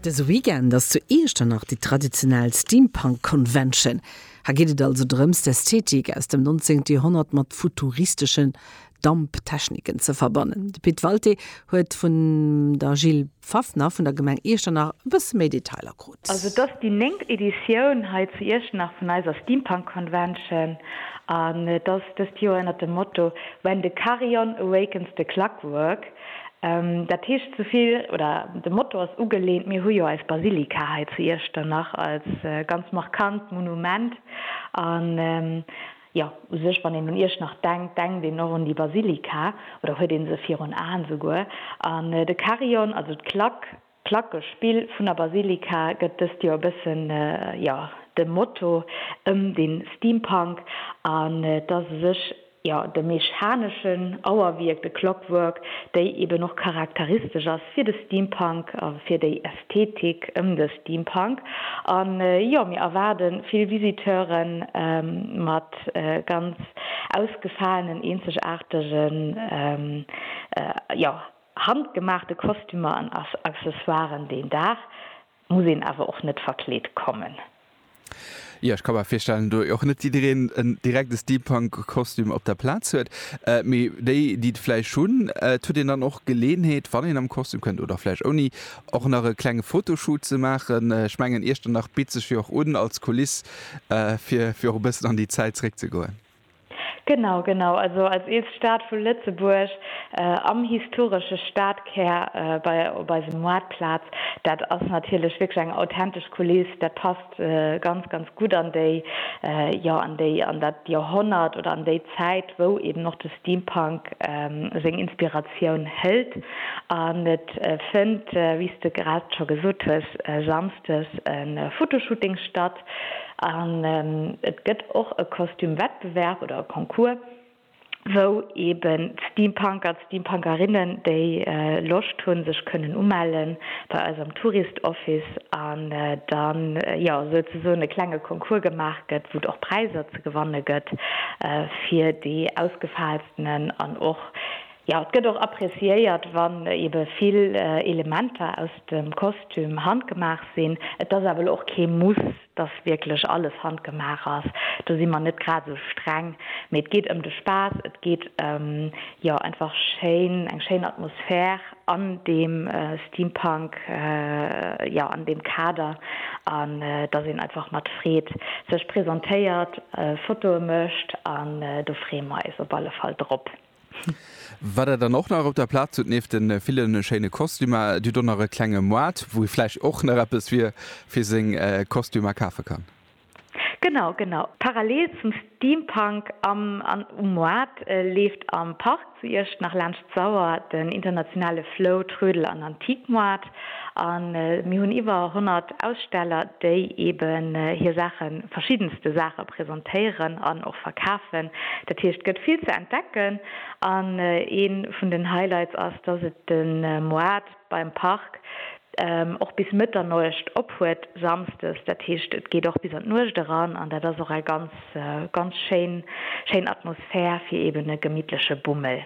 Dëse Weekend ass zu Iechternach déi traditionell Steampunk Convention. Hei geet et also drëms, d'Ästhetik aus dem 19. Joerhonnert mat futuristeschen Damptechniken ze verbannen. De Pit Walté huet vun der Jill Pfaffner vun der Gemeng Iechternach e bësse méi Detailer krut. Also et ass déi néngt Editioun hei zu Iechternach vun eiser Steampunk Convention an et ass dëst Joer ënnert dem Motto When the Carillon Awakens the Clockwork. Dat heescht souvill, oder de Motto ass ugelehnt, mir hu jo eis Basilika hei zu Iechternach als ganz markant Monument. An jo, u sech, wann een un Iechternach denkt, denkt een och un déi Basilika, oder huet ee se virun Aen esouguer. An de Carillon, also d'Klack, D'Placke Spill vun der Basilika gëtt dëst Joer e bëssen, jo, dem Motto ëm de Steampunk an et ass u sech, jo, de mechaneschen Auerwierk, de Clockwork, déi eben och charakteristesch ass fir de Steampunk a fir déi Ästhetik ëm de Steampunk. An, jo, mir erwaarde vill Visiteure mat ganz ausgefaalen, eenzegaartegen, jo, Handgemaachte Kostümer an Accessoiren, deen Dag muss een awer och net verkleet kommen. Jo, ech ka mer virstellen, do och net jiddereen en direkte Steampunk-Kostüm op der Plaz huet. Mee déi, déi et vläicht hunn, et huet een dann och d'Geleeënheet, wann een am Kostüm kënnt, oder vläicht ouni, och nach e klenge Fotoshoot ze maachen. Ech mengen, Iechternach bitt sech jo och un als Kuliss, fir och e bëssen an déi Zäit zeréckzegoen. Genau, genau. Also als eelst Stad vu Lëtzebuerg, am historesche Stadkär, bei op eisem Maartplaz, dat ass natierlech wierklech eng authentesch Kuliss. Dat passt ganz, ganz gutt an déi, jo, an déi, an dat Joerhonnert oder an déi Zäit, wou eben och de Steampunk seng Inspiratioun hëlt. An et fënnt, wéi s de grad scho gesot hues, samsdes e Fotoshooting statt. An et gëtt och e Kostüm-Wettbewerb oder e Concours, wou eeben d'Steampunker, d'Steampunkerinnen, déi Loscht hunn, sech kënnen umelle bei eis am Tourist Office an da jo souzesoen e klenge Concours gemaach gëtt, wou et och Präiser ze gewanne gëtt fir déi ausgefaalstenen an och Jo, et gëtt och appreciéiert, wann ebe vill Elementer aus dem Kostüm handgemaach sinn. Et ass awer elo och kee Muss, dass wierklech alles handgemaach ass. Do si mer net grad esou streng. Mee et geet ëm de Spaass, et geet ëm, jo, einfach schéin, eng schéin Atmosphär an deem Steampunk, jo, an deem Kader. An dass een einfach mat Freed sech presentéiert, Fotoe mécht. An do freeë mer eis op alle Fall drop. Wat der dann och nach op der Plaz hutt, nieft de ville schéine Kostümer, Dir hutt och nach e klenge Moart, wou ee vläicht och nach eppes fir seng Kostümer kafe kann. Genau, genau. Parallel zum Steampunk am an um Moart leeft am Park zu Iecht nach laanscht d'Sauer den internationale Flow, Trödel an Antiquemoart. A mir hunn iwwer 100 Aussteller, déi eben hir Saachen, verschiddenste Saache presentéieren an och verkafen. Dat heescht, et gëtt vill ze entdecken. An ee vun den Highlights ass, dass et de Moart beim Park och bis Mëtternuecht op huet, samsdes. Dat heescht, et geet och bis an d'Nuecht eran. An dat ass och eng ganz, ganz schéin, schéin Atmosphär fir eben e gemittleche Bummel.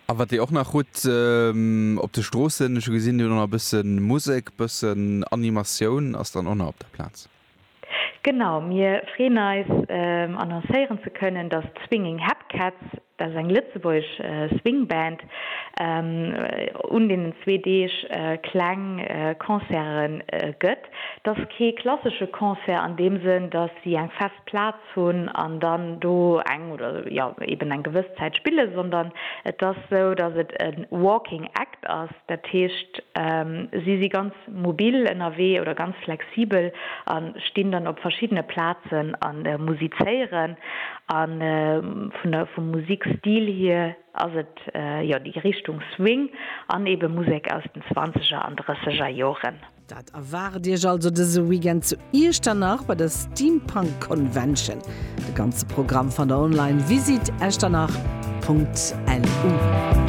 A wat dir och nach hutt op de Stroossen, ech hu gesinn, dir hutt och nach e bësse Musek, e bëssen Animatioun ass dann och nach op der Plaz. Genau, mir freeën eis annoncéieren ze kënnen, datt d'Swinging Hep Cats, dat ass eng lëtzebuergesch Swing Band, un deenen zwee Deeg kleng Concerte gëtt. T'ass kee klassesche Concert an deem Sënn, datt si eng fest Plaz hunn an dann do eng oder jo eben eng gewëss Zäit spillen, sondern et ass esou, dass et e walking act ass, dat heescht si si ganz mobil ënnerwee oder ganz flexibel a stinn dann op verschiddene Plazen a musizéieren. A vun der vum Musikstil hier ass et jo déi Richtung Swing an eben Musek aus den zwanzeger an drësseger Joren. Dat erwaart Iech also dëse Weekend zu Iechternach bei der Steampunk Convention. De ganze Programm fannt der online, visite-echternach.lu.